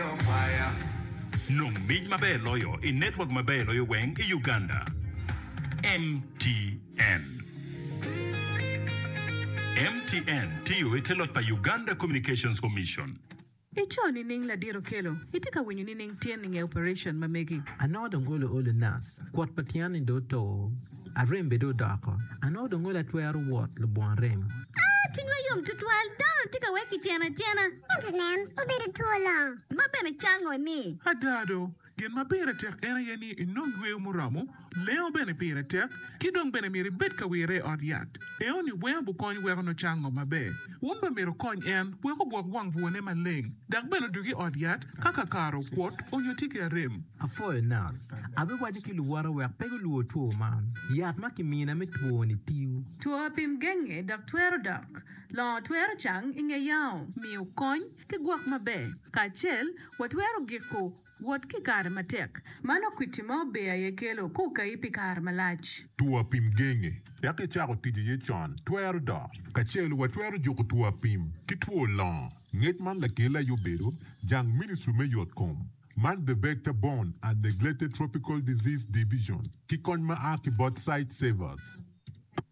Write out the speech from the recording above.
Kwaya, Nong mic maber loyo i network maber loyo weng i Uganda, MTN. MTN tiyo i te loc pa Uganda Communications Commission. I co nining ladit okelo? I tye ka winyo nining tyen i nge operation ma megi? Anongo dong olo olo nas. Kwot pa tyen ni do to. Arembe dong odoko. Anongo dong olo atwero wot lubwon rem. Aa, cwinywa yom tutwal. Dano-ni tye ka wek kicen acena. Ento nen, obedo two longo. Ma bene cango ni. Ada do, gin ma pire tek en aye ni inong yweyo muromo, lengo bene pire tek, ki dong bene myero ibed ka wirre i ot yat. Eno-ni weng obukony weko nocang ngo maber. Wun bene myero wukony en wek ogwok wang bwone maleng, dok bene odug i ot yat ka kakare okwot onyo tye ki arem. Apwoyo nas. Abiwaco ki luwota wek pe gulwor two man. Yat ma kimina me twoni tiyo. Two apim genge dok twero dok. Longo twero cang i nge yao. Miyo kony ki gwok maber kacel wa twero giko Wot ki i kare matek. Man okwitti ma ober aye kelo ka okayi pi kare malac. Two apim genge dok icako tic iye con twero dok. Kacel watwero juko two apim ki two longo. Ngec man lakelli aye obedo jang Ministry me Yotkom man The Vector Borne and Neglected Tropical Disease Division ki kony ma a ki bot Sightsavers.